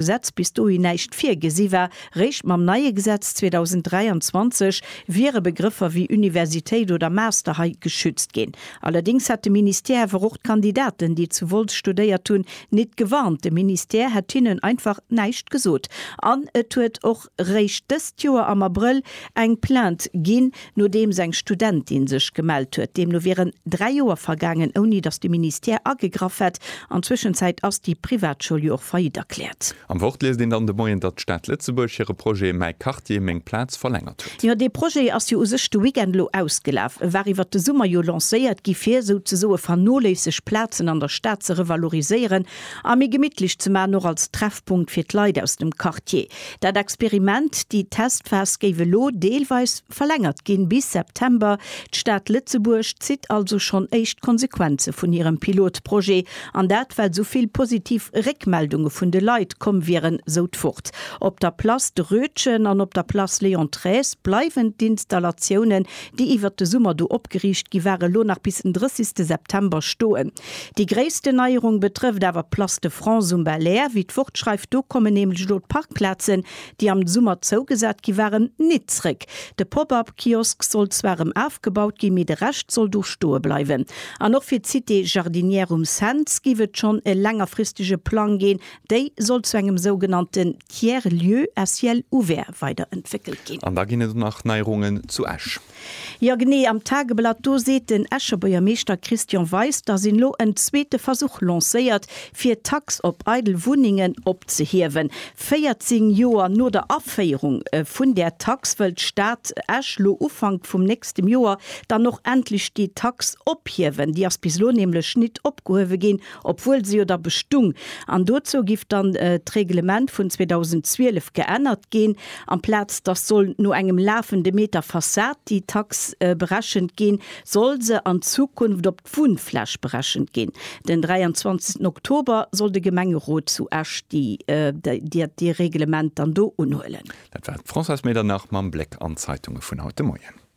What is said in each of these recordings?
Gesetz bis dohin näischt virgesi war. Réischt mam neie Gesetz 2023 wiere Begrëffer wéi Universitéit oder Master hei geschützt ginn. Allerdéngs hätt de Ministère awer och d'Kandidaten, déi zu Wolz studéiert hunn, nit gewarnt. De Ministère hätt hinnen einfach näischt gesot an et huet och. réischt dëst Joer am Abrëll eng Plainte ginn, nodeems eng Studentin sech gemellt huet. Deemno wieren dräi Joer vergaangen, ouni datt de Ministère agegraff hätt. An Zwëschenzäit ass déi Privatschoul jo och faillite erkläert. Am Wort liest een dann de Moien, datt d'Stad Lëtzebuerg hire Projet Mäi Quartier, meng Plaz verlängert huet. Jo, dee Projet ass jo u sech de Weekend elo ausgelaf. E war iwwert de Summer jo lancéiert gi fir souzesoe vernoléisseg Plazen an der Stad ze revaloriséieren a méi gemittlech ze maachen, och als Treffpunkt fir d'Leit aus dem Quartier. Dat Experiment, déi Testphas, géif elo deelweis verlängert ginn, bis September. D'Stad Lëtzebuerg zitt also schonn éischt Konsequenze vun hirem Pilotprojet, an dat well sou vill positiv Réckmeldunge vun de Leit komm wieren, sou d'Wort. Op der Place de Rötgen an op der Place Léon Thräs bleiwen d'Installatiounen, déi iwwert de Summer do opgeriicht gi waren, elo nach bis den 30 September stoen. Déi gréissten Neierung betrëfft awer d'Place de France um Belair, wéi d'Wort schreift. Do kommen nämlech elo d'Parkplazen, déi am Summer zougesat gi waren, nit zréck. De Pop-up Kiosk soll zwar rëm afgebaut gi, mee de Rescht soll do stoe bleiwen. An och fir d'Cité Jardinière um Cents giff et schonn e längerfristege Plang ginn. Déi soll zu engem sougenannten Tiers-lieu à ciel ouvert weiderentwéckelt ginn. An da ginn et och nach Neierungen zu Esch. Jo genee, am Tageblatt do seet den Escher Buergermeeschter Christian Weis, datt een elo en zweete Versuch lancéiert, fir d'Tax op eidel Wunnengen opzehiewen. 14 Joer no der Aféierung vun där Tax wëll d'Stad Esch lo Ufank vum nächstem Joer dann och endlech déi Tax ophiewen. Déi ass bis elo nämlech nit opgehuewe ginn, obwuel se jo da bestung, an dozou giff dann d'Reglement vun 2012 geännert ginn, amplaz dass soll no engem lafende Meter Fassad déi Tax berechent ginn, soll se an Zukunft op d'Wunnfläch berechent ginn. Den 23 Oktober soll de Gemengerot zu Esch dee Reglement dann do unhuelen. Dat war d'Françoise Medernach mam Bléck an d'Zeitunge vun haut de Moien.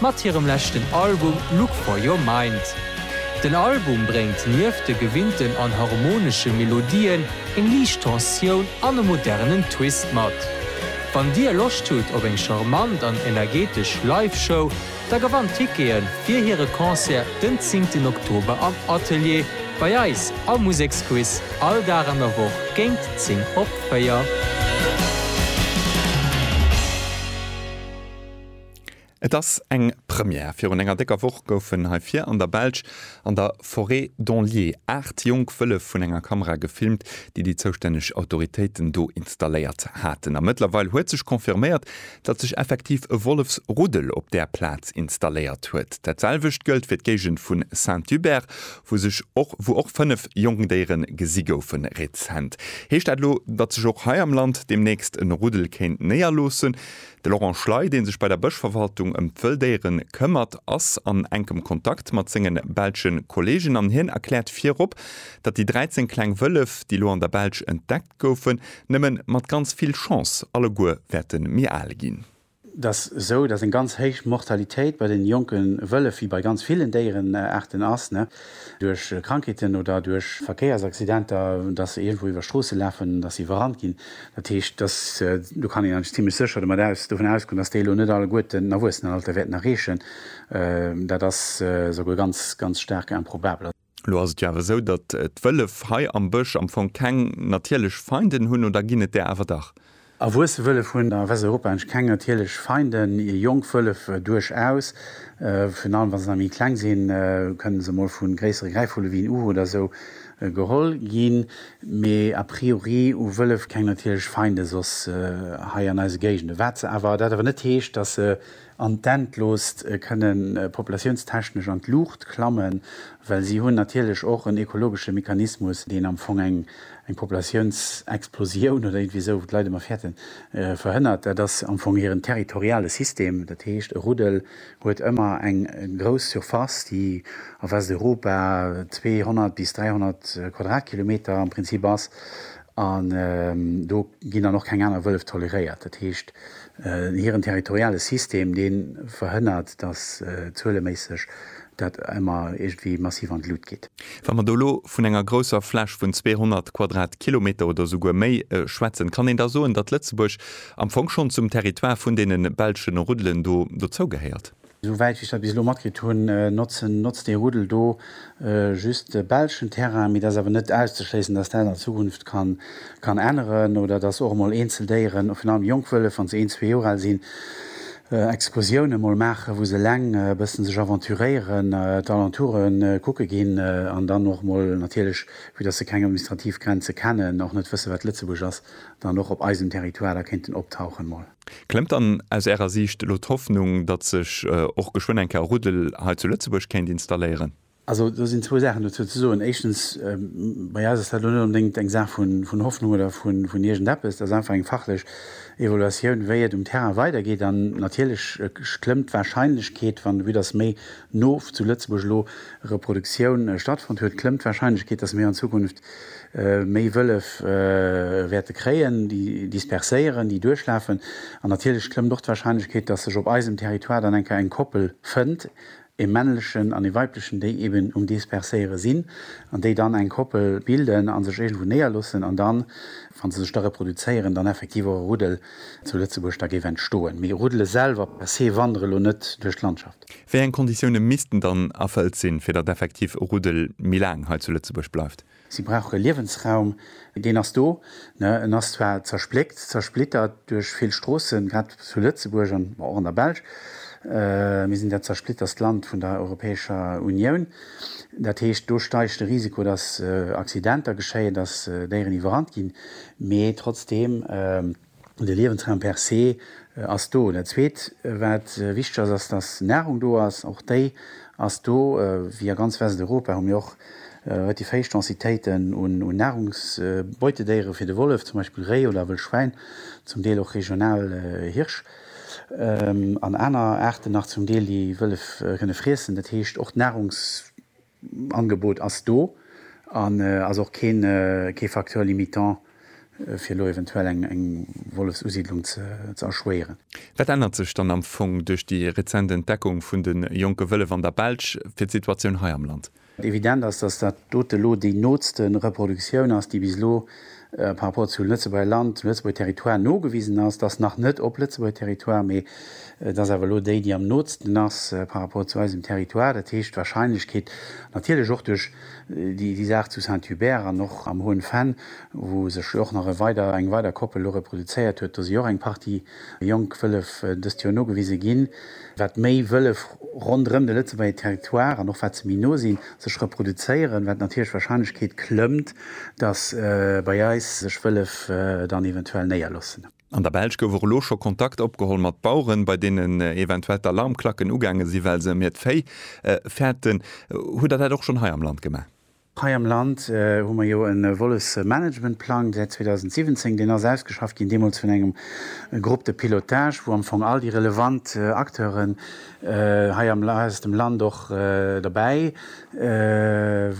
mat hirem leschten Album Look For Your Mind. Den Album bréngt nieft de gewinnten an harmonesche Melodien eng liicht Tensioun an e modernen Twist mat. Wann dir Loscht hutt op eng charmant an energetesch Live-Show, da gewannt Tickete fir hire Concert den zéngten Oktober am Atelier bei eis am Museksquiz all Dag an der Woch géint 10 op 4. Et ass eng Première. Virun enger décker Woch goufen hei vir an der Belsch an der Forêt d'Anlier aacht jonk Wëllef vun enger Kamera gefilmt, déi déi zoustänneg Autoritéiten do installéiert haten. A mëttlerweil huet sech confirméiert, datt sech effektiv e Wollefsruddel op där Plaz installéiert huet. Dat selwecht gëllt fir d'Géigend vu Saint-Hubert, wou sech och wou och fënnef jonk Déiere gesi goufen rezent. Heescht dat elo, datt sech och hei am Land deemnächst e Ruddel kéint néierloossen? De Laurent Schley, dee sech bei der Bëschverwaltung ëm d'Wëlldéiere këmmert, ass an enkem Kontakt mat senge belsche Kolleegen an hien erkläert virop, datt déi 13 kleng Wëllef, déi elo an der Belsch entdeckt goufen, nëmme mat ganz vill Chance alleguer wäerte méi al ginn. Et ass esou, datt eng ganz héich Mortalitéit bei den jonke Wëllef, wéi bei ganz villen Déierenaarten, ass. duerch Krankheeten oder duerch Verkéiersaccidenter, dass se iergendwou iwwer Stroosse lafen, dass se iwwerrannt ginn. Dat heescht, dass, do kann een eigentlech zimlech sécher domat aus, dovun ausgoen, dass déi elo net alleguerten den Erwuessenenalter wäerten erreechen. Dat ass souguer ganz, ganz staark improbabel. Elo ass et jo awer esou, datt d'Wëllef hei am Bësch am Fong keng natierlech Feinden hunn, oder ginn et där awer dach? Erwuesse Wëllef hunn a Westeuropa eng keng natierlech Feinden. Jonk Wëllef duerchaus, virun allem wa se nach méi kleng sinn, kënnen se mol vu gréissere Gräifvulle wéi en Uhu oder esou geholl ginn. Mee a priori hu Wëllef keng natierlech Feinde soss hei an eise Géigende. Wat se awer, dat awer net heescht, datt se an d'Endloost kënne populatiounstechnesch an d'Luucht klammen, well si hunn natierlech och en ekologesche Mechanismus, deen am Fong eng Populatiounsexplosioun oder iergendwéi esou, wou d'Leit ëmmer fäerten, verhënnert. Dat ass am Fong hiren territoriale System. Dat heescht, e Ruddel huet ëmmer eng grouss Surface, déi a Westeuropa 200 bis 300 Quadratkilometer am Prinzip ass, an do ginn dann och keng aner Wëllef toleréiert. Dat heescht, Hiren territoriale System, dee verhënnert, datt zueleméisseg dat ëmmer iergendwéi massiv an d'Lut geet. Wa mer do elo vun enger grousser Fläch vun 200 Quadratkilometer oder esouguer méi schwätzen, kann een da soen, datt Lëtzebuerg am Fong schonn zum Territoire vun deene belschen Ruddelen do dozougehéiert? Esou wäit wéi ech dat bis elo matkritt hunn, notzen, notzt dee Ruddel do just belschen Terrain. Mee dat ass awer net auszeschléissen, dass dat an Zukunft kann, kann änneren oder dass och emol eenzel Déieren, virun allem jonk Wëllef, wann se een, zwee Joer al sinn, Excursiounen emol maachen, wou se eleng e bëssen sech aventuréieren, d'Alentoure kucke ginn an dann och emol natierlech, vue dass se keng administrativ Grenze kennen, och net wësse wat Lëtzebuerg ass, dann och op eisem Territoire da kéinten optauchen mol. Klëmmt dann aus Ärer Siicht elo d'Hoffnung, datt sech och geschwënn eng Kéier Ruddel hei zu Lëtzebuerg kéint installéieren? Also do sinn zwou Saachen dozou ze soen. Éischtens, bei eis ass dat elo net onbedéngt eng Saach vun Hoffnung oder vun iergendeppes. Dat ass einfach eng fachlech Evaluatioun, wéi et um Terrain weidergeet. An natierlech klëmmt d'Warscheinlechkeet, wann de But ass, méi no zu Lëtzebuerg elo Reproduktioun stattfonnt huet, klëmmt d'Warscheinlechkeet, datt mir an Zukunft méi Wëllef wäerte kréien, déi disperséieren, déi duerchlafen an natierlech klëmmt och d'Warscheinlechkeet, dass sech op eisem Territoire dann eng Kéier eng Koppel fënnt, e männlechen an e weiblechen, déi eben um Disperséiere sinn an déi dann eng Koppel bilden a sech iergendwou néierloossen an dann, wa se sech da reproduzéieren, dann effektiv och e Ruddel zu Lëtzebuerg da géif entstoen. Mee Ruddele selwer per se wandere lo net duerch d'Landschaft. Zukunft. Wéi eng Konditioune missten dann erfëllt sinn, fir datt effektiv e Ruddel méi laang hei zu Lëtzebuerg bleift? Si brauche Liewensraum. Deen ass do. En ass zwar zerspléckt, zersplittert duerch vill Stroossen, grad zu Lëtzebuerg an och an der Belsch. Mir sinn dat zersplitterst Land vun der Europäescher Unioun. Dat heescht, do steigt de Risiko, datt Accidenter geschéien, datt Déieren iwwerrannt ginn. Mee trotzdeem. De Liewensraum per se ass do. Dat Zweet, wat wichteg ass, ass, dass Nahrung do ass. Och déi ass do. Wéi a ganz Westeuropa hu mir och relativ héich Densitéiten un Nahrungsbeutedéiere fir de Wollef, zum Beispill Réi oder Wëllschwäin, zum Deel och regional Hirsch an aner Aarten nach zum Deel, déi Wëllef kënne friessen. Dat heescht, och d'Nahrungs. D'Angebot ass do an ass och kee Facteur limitant, fir elo eventuell eng Wollefsusiddlung ze erschwéieren. Wat ännert sech dann am Fong duerch déi rezent Entdeckung vun de jonke Wëllef an der Belsch fir d'Situatioun hei am Land? Evident ass, dass dat dote elo déi nootste Reproduktioun ass, déi bis elo par rapport zum Lëtzebuerger Land, zum Lëtzebuerger Territoire nogewisen ass, dass nach net op Lëtzebuerger Territoire, mee et ass awer elo déi, déi am nootsten ass par rapport zu eisem Territoire. Dat heescht, d'Wahrscheinlechkeet, natierlech och duerch déi Saach zu Saint-Hubert an och am Hoen Venn, wou sech jo och nach e weider, eng weider Koppel elo reproduzéiert huet, do si och eng Partie Jonk Wëllef dëst Joer nogewise ginn, wat méi Wëllef ronderëm de Lëtzebuerger Territoire an och wat se méi no sinn, sech reproduzéieren, wat natierlech d'Warscheinlechkeet klëmmt, datt bei eis sech Wëllef dann eventuell néierloossen. An der Belsch gouf och elo scho Kontakt opgeholl mat Baueren, bei deenen eventuell d'Alarmklacken ugaange sinn, well se em hiert Véi fäerten. Hutt Der dat och schonn hei am Land gemaach? Hei am Land hu mer jo e Wollesmanagementplang säit 2017. Deen ass ausgeschafft ginn, deemools vun engem Groupe de pilotage, wou am Fong all déi relevant Acteuren hei aus dem Land och derbäi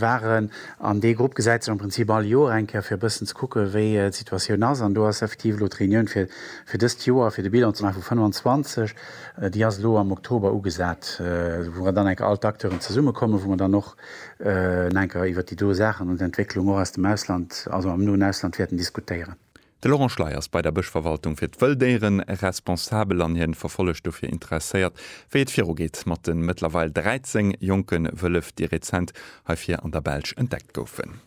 waren. An dee Grupp gesäit sech am Prinzip all Joer eng Kéier, fir e bëssen ze kucke wéi d'Situatioun ass. An do ass effektiv elo d'Reunioun fir dëst Joer, fir de Bilan ze maache vu 25, déi ass elo am Oktober ugesat, wou dann enk all d'Acteuren zesummekommen, wou mer dann och Enker iwwert déi do Saachen an d'Entwécklung och aus dem Ausland, also am noen Ausland, wäerten diskutéieren. De Laurent Schley ass bei der Bëschverwaltung fir d'Wëlldéiere responsabel an hien verfollegt dofir interesséiert, wéi et virugeet mat de mëttlerweil 13 jonke Wëllef, déi rezent hei vir an der Belsch entdeckt goufen.